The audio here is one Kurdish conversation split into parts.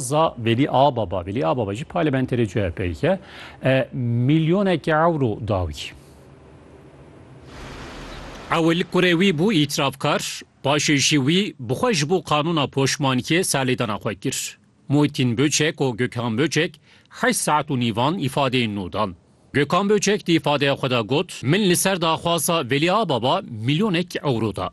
Za Velî Ababa, Velî Ababa jî parlamenterê CHP'yê ye. E, Milyonekî ewro da wî. Ewil kurê wî bû îtirafkar, paşê jî wî bi xwe ji bo qanûna poşmankiyê serlêdana xwe kir. Muhîtîn Böçek û Gökhan Böçek heşt saet û nîvan îfadeyên nû dan. Gökhan Böçek di îfadeya xwe de got, Min li ser daxwaza Velî Ababa milyonekî ewro da.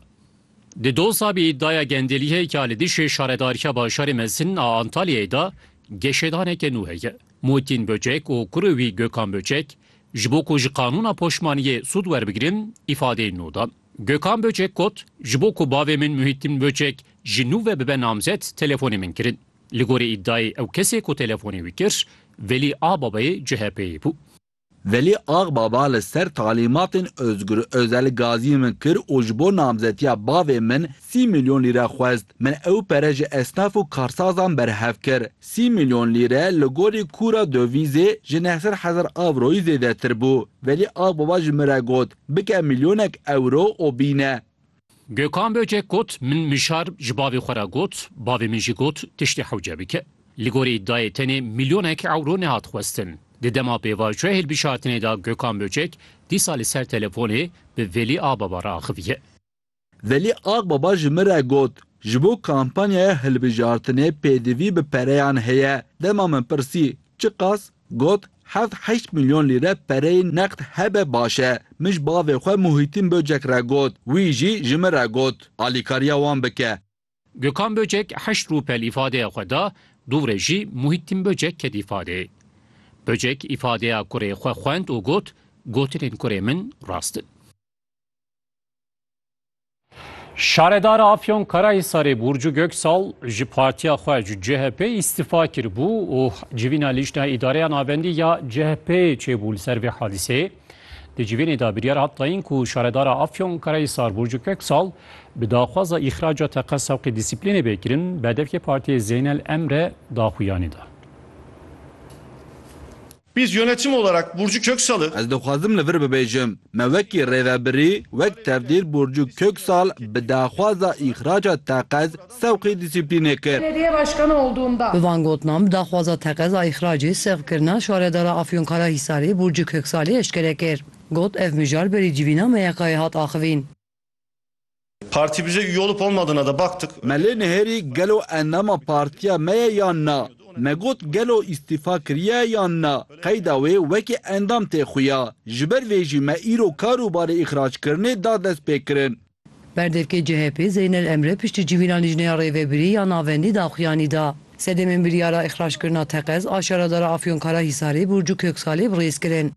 Di doza bi îdaya Gendelîhe ya li dijî Şaredariya Bajarê Mezin a Antalyayê de geşedaneke nû heye. Mûtîn Böcek û kurê wî Gökhan Böcek ji bo ku ji qanûna poşmaniyê sûd werbigirin îfadeyên nû dan. Gökhan Böcek got, Ji bo ku bavê min Muhîttin Böcek ji nû ve bibe namzet telefonê min kirin. Li gorî îdayê ew kesê ku telefonê wî kir Velî a babayê CHP'ê bû. Velî Axbaba li ser talîmatên Ozgur Ozel gazî min kir û ji bo namzetiya bavê min sî milyon lîre xwest. Min ew pere ji esnaf û karsazan berhev kir. Sî milyon lîre li gorî kûra dovîzê ji neh sed hezar avroyî zêdetir bû. Velî Axbaba ji min re got, Bike milyonek ewro û bîne. Gökhan Böcek got, Min mişar ji bavê xwe re got, bavê min jî got tiştê hewce bike. Li gorî iddiayê tenê milyonek ewro nehat xwestin. Di dema pêvajoyê hilbişartinê de Gökhan Böcek dîsa li ser telefonê bi Velî Agbaba re axiviye. Velî Agbaba ji min re got, Ji bo kampanyaya hilbijartinê pêdivî bi pereyan heye. Dema min pirsî, Çiqas? Got, Heft heşt milyon lîre pereyê neqd hebe baş e. Min ji bavê xwe Muhîtîn Böcek re got. Wî jî ji min re got, alîkariya wan bike. Gökhan Böcek heşt rûpe li îfadeya xwe da, du re jî Muhîtîn Böcek ket îfadeyê. Böcek îfadeya kurê xwe xwend û got, Gotinên kurê min rast in. Şaredara Afyon Karahisarê Burcu Göksal ji partiya xwe ji CHP îstifa kiribû û civîna lîşna îdareya navendî ya CHP'ê çêbû li ser vê hadîseyê. Di civînê de biryar hat dayîn ku şaredara Afyon Karahisar Burcu Göksal bi daxwaza îxraca teqe sewqê dîsîplînê bê kirin berdevkê partiyê Zeynel Emre daxuyanî da. Biz yönetim olarak Burcu Köksal'ı. Ez dixwazim li vir bibêjim, me wekî rêvebirî, wek tevdîr Burcu Köksal bi daxwaza îxraca teqez sewqî dîsîplînê kir. Belediye başkanı olduğumda. Bi van gotinan bi daxwaza teqez a îxracê sewqkirina şaredara Afyonkarahisarê Burcu Köksalê eşkere kir. Got, Ev mijar berî civîna me ya kayê hat axivîn. Parti bize üye olup olmadığına da baktık. Me lê nihêrî gelo endama partiya me ye yan na. Me got gelo îstîfa kiriye yan na, qeyda wê wekî endam tê xuya. Ji ber vê jî me îro kar û barê îxrackirinê da destpêkirin. Berdevkê CHP'ê Zeynel Emre piştî civîna Lijneya Rêvebirî ya Navendî daxuyanî da. Sedemên biryara îxrackirina teqez a şaredara Afyonkarahisarê Burcu Köksalê bi rêz kirin.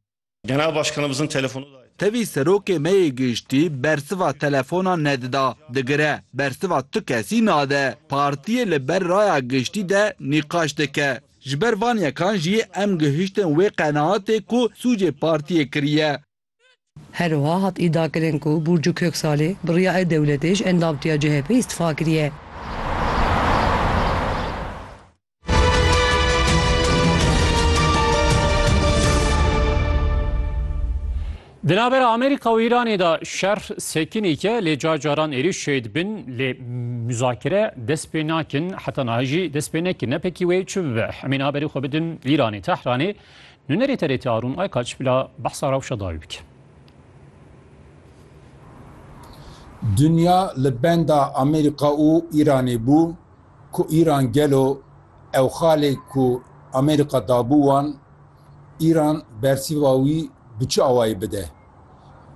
Genel Başkanımızın telefonu da. Tevî serokê me yê giştî bersiva telefona nedida, digire, bersiva tu kesî nade. Partiyê li ber raya giştî de nîqaş dike. Ji ber van yekan jî em gihiştin wê qenaatê ku sûcê partiyê kiriye. Her wiha hat îdiakirin ku Burcu Köksalê bi riyayê dewletê ji endamtiya CHP'ê îstifa kiriye. Di navbera Amerîka û Îranê de şer sekinêke lê car caran êrî şê dibin lê muzakere dest pê nakin heta nahê jî dest pê nekin ne pekî wê çi bibe hemê niha berê xwe bidin Îranê Tehranê nûnerê TRT Arûn Aykaç bila behsa rewşa dawî bike. Dinya li benda Amerîka û Îranê bû. Ku Îran gelo ew xalê ku Amerîka dabû wan, Îran bersiva wî bi çi awayî bide?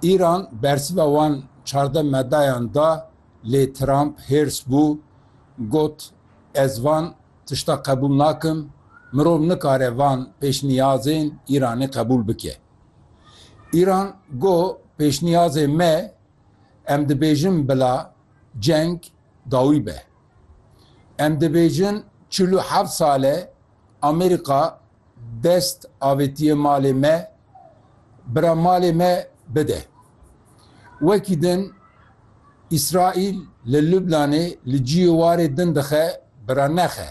Îran bersiva wan çardeh medayan da lê Trump hêrs bû, got, Ez van tişta qebûl nakim, mirov nikare van pêşniyazên Îranê qebûl bike. Îran got, Pêşniyazê me, em dibêjin bila ceng dawî be. Em dibêjin çil û heft sal e Amerîka dest avêtiye malê me, bira malê me bide. Wekî din Îsraîl li Lubnanê li ciyê warê din dixe bira nexe.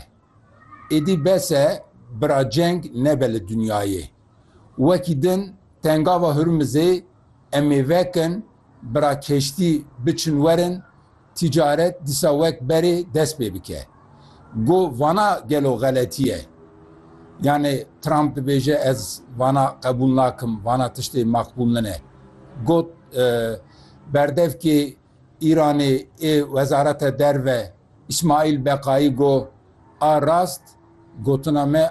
Êdî bes e, bira ceng nebe li dinyayê. Wekî din Tengava Hurmizê em ê vekin, bira keştî biçin werin, tîcaret dîsa wek berê dest pê bike. Go vana gelo xeletî ye? Yanê Trump dibêje ez vana qebûl nakim, vana tiştê maqbûl nine. Got berdevkê Îranê ê Wezareta Derve Îsmaîl Beqayî got, A rast gotina me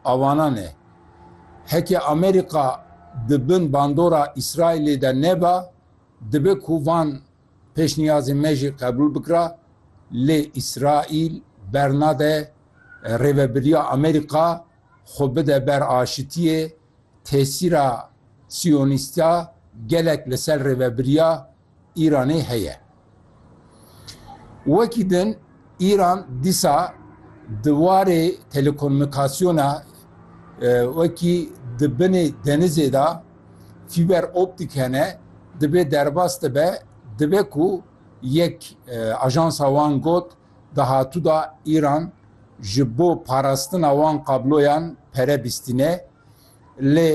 avanan e. Heke Amerîka di bin bandora Îsraîlê de neba, dibe ku van pêşniyazên me jî qebûl bikira, lê Îsraîl bernade Rêvebiriya Amerîka xwe bide ber aşitiyê, tesîra siyonîstiya gelek li ser Rêvebiriya Îranê heye. Wekî din Îran dîsa di warê telekomûnîkasyona wekî di binê denizê de fîber optîk hene dibê derbas dibe dibe ku yek ajansa wan got di hatû de Îran ji bo parastina wan kabloyan pere bîstîne. Lê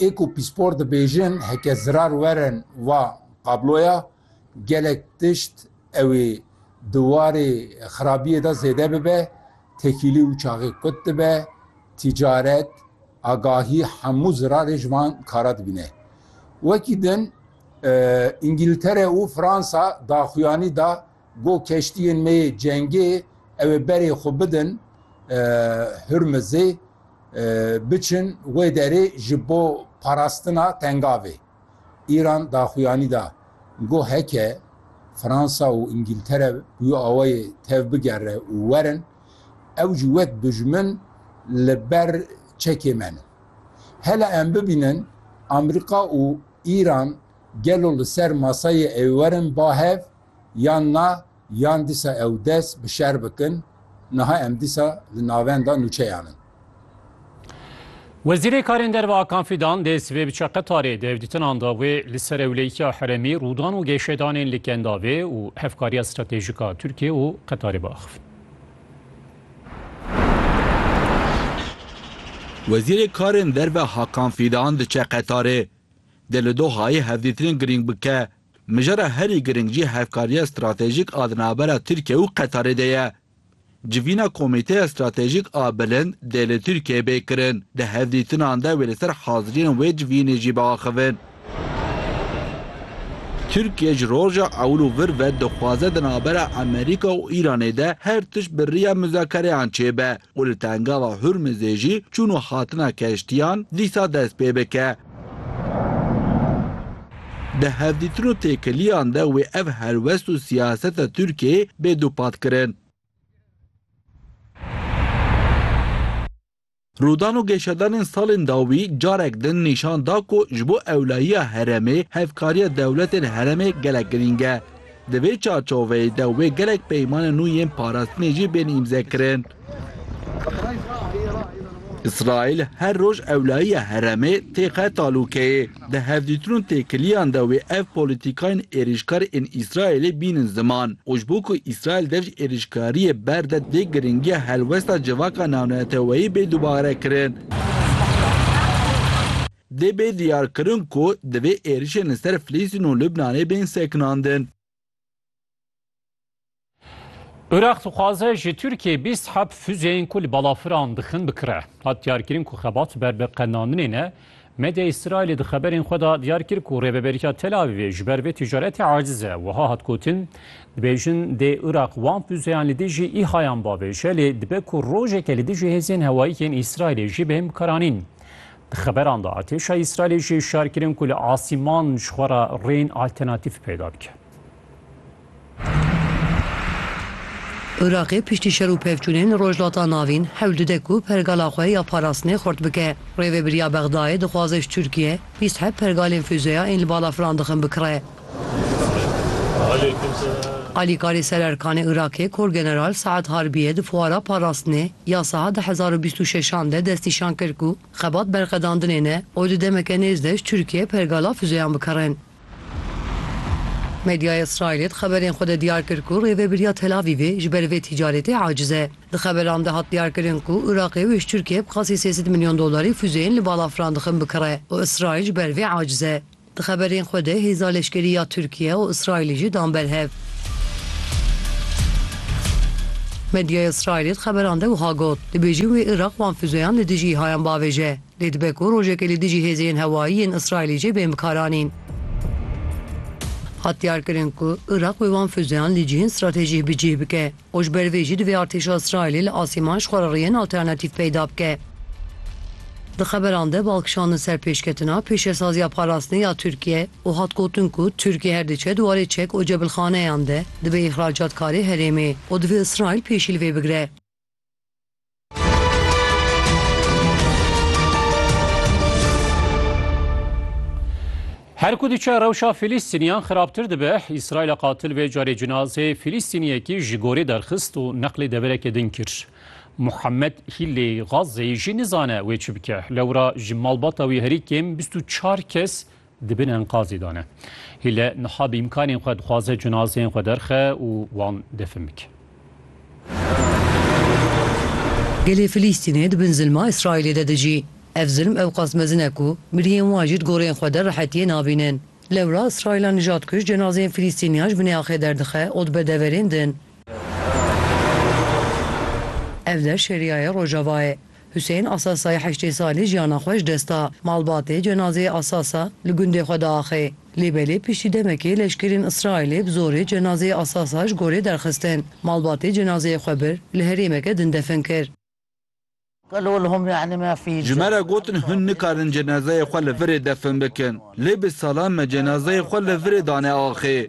ê ku pîspor dibêjin heke zirar werin va kabloya gelek tişt ew ê di warê xirabiyê de zêde bibe, tekîlî û çaxê kut dibe, tîcaret, agahî hemû zirarê ji van kara dibîne. Wekî din Îngîltere û Fransa daxuyanî da, Go keştiyên me yê cengê ew ê berê xwe bidin Hurmizê, biçin wê derê ji bo parastina Tengavê. Îran daxuyanî da, go heke Fransa û Îngîltere bi wî awayê tev bigere û werin, ew jî wek dujmin li ber çekê me ne. Hele em bibînin Amerîka û Îran gelo li ser masayê ewê werin ba hev? yan na yan dîsa ew dest bi şer bikin, niha em dîsa li navenda nûçeyan in. Wezîrê Karên Derve Akan Fîdan dê sibê biçe Qetarê, di hevdîtinan de wê li ser ewleyikiya herêmî, rûdan û gêşedanên li Kendavê û hevkariya stratejîk a Tirkiye û Qetarê biaxivin. Wezîrê Karên Derve Hakan Fîdan diçe Qetarê, dê li Dohayê hevdîtinên girîng bike Mijara herî giring jî hevkariya stratejîk a di navbera Tirkiye û Qetarê de ye. Civîna Komîteya Stratejîk a Bilind dê li Tirkiyeyê bê kirin, di hevdîtinan de wê li ser haziriyên wê civînê jî biaxivin. Tirkiye ji roja ewil û vir ve dixwaze di navbera Amerîka û Îranê de her tişt bi riya muzakereyan çêbe û li Tengava Hurmizê jî çûn û hatina keştiyan dîsa dest pê bike. Di hevdîtin û têkiliyan de wê ev helwest û siyaseta Tirkiyeyê bê dûpatkirin. Rûdan û geşadanên salên dawî carek din nîşan da ku ji bo ewlayiya herêmê hevkariya dewletên herêmê gelek girîng e. Di vê çarçoveyê de wê gelek peymana nû yên parastinê jî bên îmzekirin. Îsraîl her roj ewlayiya heremê têxe talûkeyê. Di hevdîtin û têkiliyan de wê ev polîtîkayên êrîşkar ên Îsraîlê bînin ziman û ji bo ku Îsraîl dev ji êrîşkariyê ber de dê giringiya helwesta civaka navneteweyî bê dubarekirin. Dê bê diyarkirin ku divê êrişên li ser Filistîn û Libnanê bên sekinandin. Iraq dixwaze ji Tirkiyê bîst heb fuzeyên ku li balafiran dixin bikire. Hat diyarkirin ku xebat ber bi qenaninê ne. Medya Îsraîlê di xeberên xwe de diyar kir ku rêveberiya Tel Avîvê ji ber vê ticaretê aciz e. Wiha hat gotin, Dibêjin dê Iraq wan fuzeyan li dijî îhayan bavêje lê dibe ku rojeke li dijî hêzên hewayî yên Îsraîlê jî bên bikaranîn. Di xeberan de artêşa Îsraîlê jî hişyar kirin ku li asîman ji xwe re rêyên alternatîf peyda bike. Iraqê piştî şer û pevçûnên li Rojhilata Navîn hewl dide ku pergala xwe ya parastinê xurt bike. Rêvebiriya Bexdayê dixwaze ji Tirkiye bîst heb pergalên fûzeya ên li balafiran dixin bikire. Alîkarê Sererkanê Îraqê Korgeneral Saad Harbiyê di fuara parastinê ya Saha di hezar û bîst û şeş an de destnîşan kir ku xebat berxedandinê ne û di demeke nêz de ji Tirkiyeyê pergala fûzeyan bikirên. Medyaya Îsraîlê di xeberên xwe de diyar kir ku rêvebiriya Tel Avîvê ji ber vê tîcaretê aciz e. Di xeberan de hat diyarkirin ku Îraqê wê ji Tirkiyeyê bi qasî sê sed milyon dolarî fûzeyên li balafiran dixin bikire û Îsraîl ji ber vê aciz e. Di xeberên xwe de hêza leşkerî ya Tirkiye û Îsraîlê jî dan ber hev. Medyaya Îsraîlê di xeberan de wiha got, Dibêjin wê Iraq wan fûzeyan li dijî îhayan biavêje, lê dibe ku rojekê li dijî hêzê yên hewayî yên Îsraîlê jê bên bikaranîn. Hat diyarkirin ku Iraq wê wan fûzeyan li cihên stratejîh bi cih bike. û ji ber vê jî divê artêşa Îsraîlê li asîman ji xwe re rêyên alternatîf peyda bike. Di xeberan de bal kişandin ser pêşketina pêşesaziya parastinê ya Tirkiye û hat gotin ku Tirkiye her diçe di warê çek û cebilxaneyan de dibe îxracatkarê herêmê û divê Îsraîl pêşî li vê bigire. Her ku diçe rewşa Fîlîstîniyan xirabtir dibe, Îsraîla qatil vê carê cinazê Fîlîstîniyekî ji gorê derxist û neqlê devereke din kir. Muhammed Hîllê Gazeyî jî nizane wê çi bike. Lewra ji malbata wî herî kêm bîst û çar kes di bin enqazê de ne. Hîle niha bi îmkanên xwe dixwaze cinazeyên xwe derxe û wan defin bike. Gelê Filîstînê di bin zilma Îsraîlê de dijî. Ev zilm ewqas mezin e ku miriyên wan jî di goreyên xwe de rehetiyê nabînin. Lewra Îsraîla nijadkuj cenazeyên Filîstîniyan ji binê axê derdixe û dibe deverên din. Ev der şeriyayê Rojavayê. Husên Asasayê heştê salî jiyana xwe ji dest da. Malbatê cenazeyê Asasa li gundê xwe diaxê. Lê belê piştî demekê leşkerên Îsraîlê bi zorê cenazeyê Asasa ji gorê derxistin. Malbatê cenazeyê xwe bir li herêmeke din defin kir. Ji me re gotin hûn nikarin cenazeyê xwe li virê defin bikin. Lê bi salan me cenazeyê xwe li virê dane axê.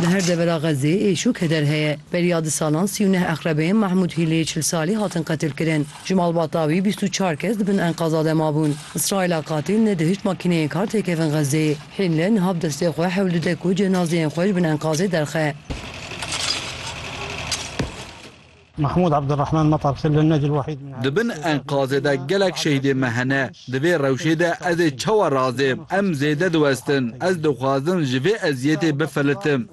Li her devera Xezzê êş û keder heye. Beriya di salan sî û neh eqrebeyên Mahmûd Hîlê çil salî hatin qetilkirin. Ji malbata wî bîst û çar kes di bin enqaza de mabûn. Îsraîla qatîl ne di hişt makîneyên kar têkevin Xezzeyê. Hîle niha bi destê xwe hewl dide ku cenazeyên xwe ji bin enqazê derxe. Mahmûd Abdulrahman Matar Xil li Necil Wahîd min Di bin enkazê de gelek şehîdên me hene. Di vê rewşê de ez ê çawa razêm? Em zêde diwestin. Ez dixwazin ji vê eziyetê bifilitim.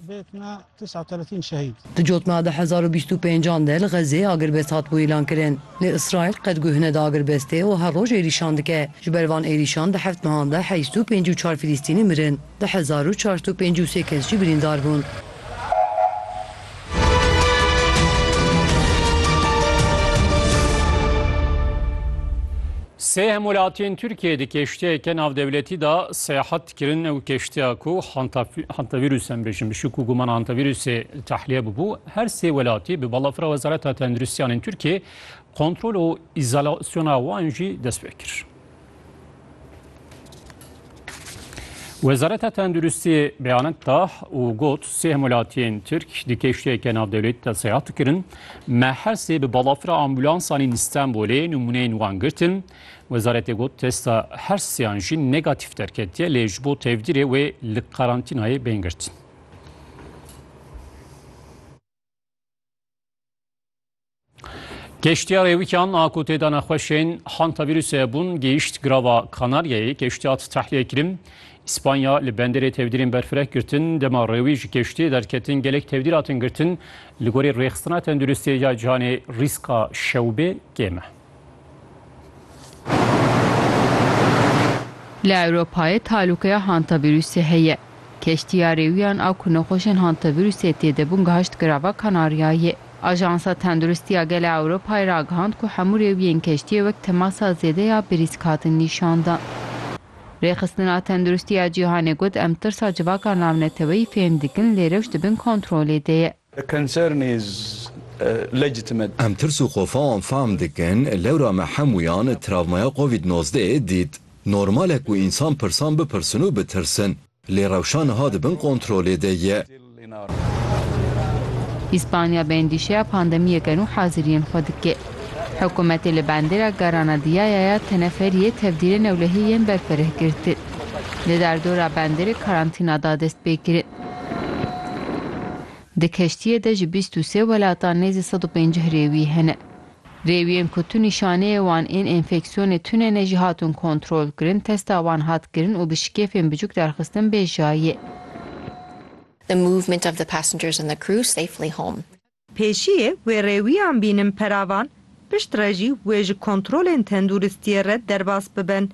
Di cot me de hezar û bîst û pênc an de li Xezzeyê agirbest hatibû îlankirin. Lê Îsraîl qet guh neda agirbestê û her roj êrîşan dike. Ji ber van êrîşan di heft mehan de heşt û pêncî û çar Filîstînî mirin. Du hezar û çar sed û pêncî û sê kes jî birîndar bûn. Sê hemwelatiyên Tirkiyeyê di keştiyeke navdewletî de seyahat dikirin ew keştiya ku hantavîrûs em bêjin bi şik û guman hantavîrûsê tahliye bûbû her sê welatî bi balafira Wezareta Tendirustiyan ên Tirkiyeyê kontrol û îzolasyona wan jî dest pê kir. Wezareta Tenduristiyê beyanek da û got sê hemwelatiyên Tirk di keştiyeke navdewletî de seyahat dikirin. Me her sê bi balafira ambulansan ên Stenbolê nimûneyên wan girtin. Wezaretê got testa her seyan jî negatîf derketiye lê ji bo tevdîrê wê li karantînayê bên girtin. Keştiya Rêwîkan a ku têda nexweşên hantavirûsê bûn gihîşt girava Kanaryayê keştî hat tehliyekirîn. İspanya li benderê tevdîrên berfireh girtin, dema rêwî ji keştiyê derketin gelek tevdîr hatin girtin. Li gorî rêxistina tenduristiyê ya cîhanê rîska şewbê kêm e. Li Ewropayê talûkeya hantavîrûsê heye. Keştiya rêwiyan a ku nexweşên hantavîrûsê tê de bûn gihişt girava Kanaryayê. Ajansa Tenduristiya Gel a Ewropayê ragihand ku hemû rêwiyên keştiyê wek temasa zêde ya birîsk hatin nîşandan. Rêxistina Tenduristiya Cîhanê got, Em tirsa civaka navneteweyî fêm dikin lê rewş di bin kontrolê de ye. The concern is legitimate. Em tirs û xofa wan fehm dikin, lewra me hemûyan travmaya covid nozdeh ê dît. Normal e ku însan pirsan bipirsin û bitirsin. Lê rewşa niha di bin kontrolê de ye. Îspanya bi endîşeya pandemiyê gen û haziriyên xwe dike. Hikûmetê li bandera Garanadiyaya ya teneferiyê tevdîrê newlehiyê yên berfireh girtin. Di derdora banderê karantîna da dest pê kirin. Di keştiyê de ji bîst û sê welatan nêzî sed û pêncîh rêwî hene. Rêwiyên ku tu nîşaneyê wan ên enfeksiyonê tune ne jî hatin kontrolkirin, testa wan hat kirin û bi şikêfên biçûk derxistin bê jiyayê. The movement of the passengers and the crew safely home. Pêşiyê wê rêwiyan bînin peravan, piştre jî wê ji kontrolên tenduristiyê re derbas bibin.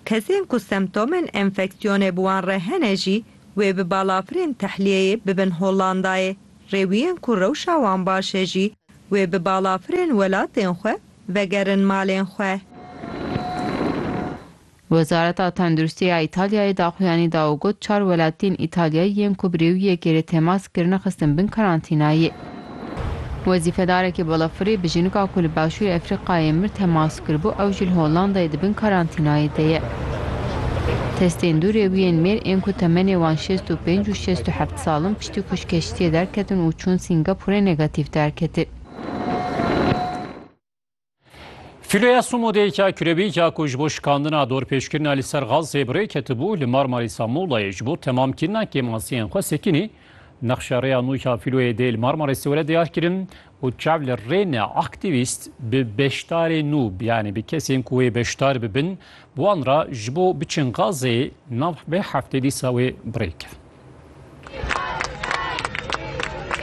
Kesên ku semtomên enfeksiyonê bi wan re hene jî wê bi balafirên tehliyeyê bibin Hollandayê. Rêwiyên ku rewşa wan baş e jî wê bi balafirên welatên xwe vegerin malên xwe. Wezareta Tenduristî ya Îtalyayê daxuyanî da û got çar welatiyên Îtalyayî yên ku bi rêwiyekê rê temas kirine xistin bin karantînayê. Wezîfedarekî balafirê bi jinika ku li Başûrê Efrîqayê mir temas kiribû ew ji li Hollandayê di bin karantînayê de ye. Testên du rêwiyên mêr ên ku temenê wan şêst û pênc û şêst û heft sal in piştî ku ji keştiyê derketin û çûn Singapûrê negatîf derketin. Filoya Sumodêka kürebîka ku ji bo şikandina dorpêçkirina li ser Gazê bi rê ketibû li Marmarîsa Muğlayê ji bo temamkirina kêmasiyên xwe sekinî. Nexşa rêya nû ya filoyê dê li Marmarîsê were diyarkirin û çav li rê ne aktîvîst bi beşdarê nû yanî bi kesên ku wê beşdar bibin wan re ji bo biçin Gazê nav vê heftê dîsa wê bi rê kir.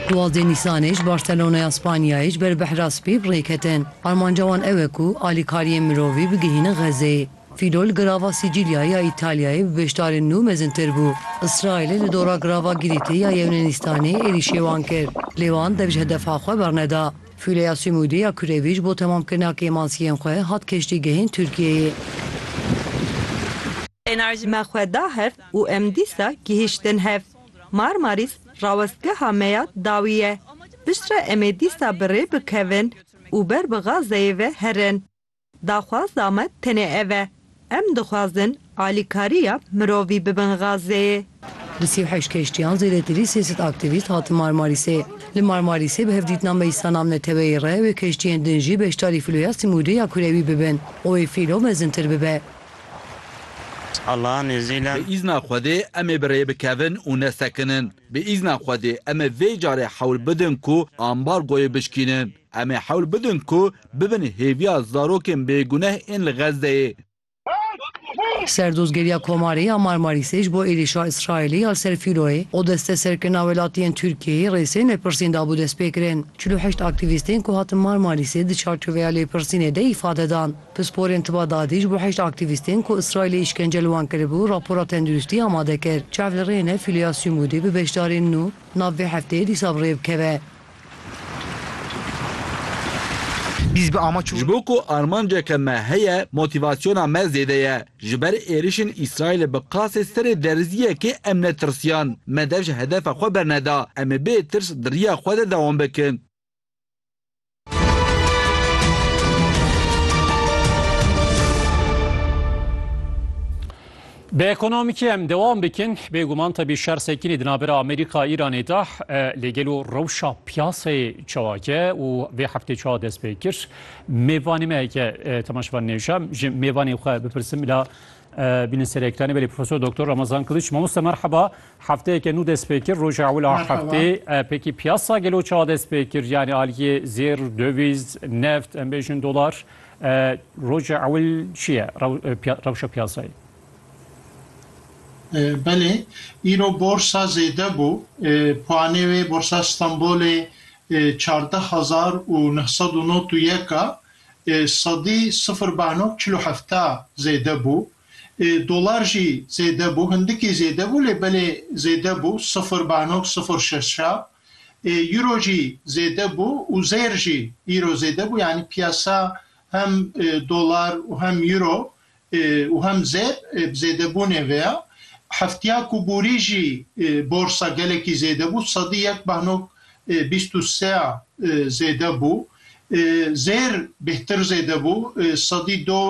Duwazdeh Nîsanê ji Barcelonaya Spanyayê ji ber bexra spî bi rê ketin. Armanca wan ew e ku alîkariyên mirovî bigihînin Xezzeyê. Fîlo li girava Sîcîlyayê ya Îtalyayê bi beşdarên nû mezintir bû. Îsraîlê li dora girava Gîrîtê ya Yewnenîstanê êrîşê wan kir, lê wan dev ji hedefa xwe berneda. Fîloya Sumûdê ya Kurevî ji bo temamkirina kêmansiyên xwe hat keştîgehên Tirkiyeyê. Me xwe da hev û em dîsa gihîştin hev. Marmarîs rawestgeha me ya dawî ye. Piştre em ê dîsa bi rê bikevin û ber bi Gazeyê ve herin. Daxwaza me tenê ev e. Em dixwazin alîkariya mirovî bibin Gazeyê. Li sî û heşt keştiyan zêdetirî sê sed aktîvîst hatin Marmarîsê. Li Marmarîsê bi hevdîtina meclisa navneteweyê re wê keştiyên din jî beşdarî fîloya Simûdê ya Kurewî bibin û wê fîlo mezintir bibe. Allah nêzîle. Bi îzna Xwedê em ê bi rê bikevin û nesekinin. Bi îzna Xwedê em ê vê carê hewl bidin ku ambargoyê bişkînin. Em ê hewl bidin ku bibin hêviya zarokên bêguneh ên li Xezzeyê. Serdozgeriya Komarê ya Marmarîsê ji bo êrîşa Îsraîlê ya li ser Fîloyê û desteserkirina welatiyên Tirkiyeyê rê sê lêpirsîn dabû destpêkirin. Çil û heşt aktîvîstên ku hatin Marmarîsê di çarçoveya lêpirsînê de îfade dan. Pisporên Tiba Dadî ji bo heşt aktîvîstên ku Îsraîlê îşkence li wan kiribû rapora tenduristî amade kir. Çav li rê ne Filiya Sumûdî bi beşdarên nû nav vê hefteyê dîsa bi rê bikeve. Ji bo ku armanceke me heye motîvasyona me zêde ye. Ji ber êrişên Îsraîlê bi qasê serê derziyekê em netirsiyan. Me dev ji hedefa xwe berneda. Em ê bê tirs di riya xwe de dewam bikin. Bi ekonomîkê em dewam bikin bêguman tebî şer sekinî di navbera Amerîka Îranê de lê gelo rewşa piyaseyê çewake û vê heftê çawa dest pê kir mêvanê me heke temaşevan nêşem ji mêvanê xwe bipirsim la Bîne ser ekranê belê Profesor Doktor Ramazan Kiliç. Mamoste merheba. Hefteyeke nû dest pê kir roja ewil a heftê pekî piyasa gelo çawa dest pê kir yanî aliyê zêr döviz neft em bêjin dolar roja ewil çi ye rewşa piyasayê? Belê îro borsa zêde bû puanê wê borsa Stenbolê çardeh hezar û neh sed û not û yek a sedî sifir bano çil û hefta zêde bû. Dolar jî zêde bû, hindikî zêde bû lê belê zêde bû sifir bano sifir şeşa. Euro jî zêde bû û zêr jî îro zêde bû. Yanî piyasa hem dolar û hem euro û hem zêr bi zêdebûnê ve ya. Heftiya ku borî jî borsa gelekî zêde bû, sedî yek behnok bîst û se ya zêde bû. Zêr bêhtir zêde bû, sedî do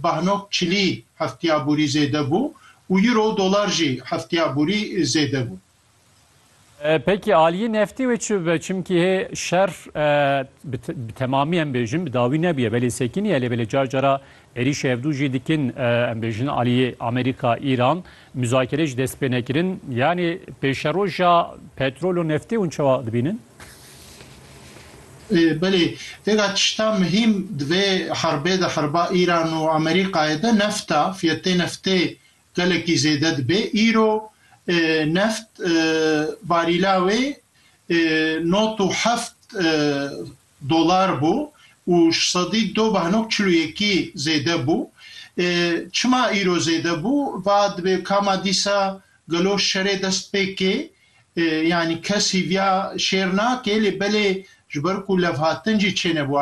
behnok çilî heftiya borî zêde bû û euro û dolar jî heftiya borî zêde bû. Peki aliyê neftê wê çi bibe? Çimkî hê şer bi temamî em bêjin bi dawî nebûye belê sekinî ye lê belê car cara êrîşê hevdû jî dikin em bêjin aliyê Amerîka, Îran muzakere jî dest pê nekirin yanî pêşeroja petrol û neftê hûn çawa dibînin? Belê têka tişta muhîm di vê herbê de herba Îran û Amerîkayê de neft e. Fiyetê neftê Gelekî zêde dibe. Îro neft barîla wê nod û heft dolar bû û sedî do behnok çil û yekî zêde bû. Çima îro zêde bû? Va dibê ka ma dîsa gelo şerê dest pê kê. Yanî kes hîviya şêr nake lê belê ji ber ku levhatin jî çênebû.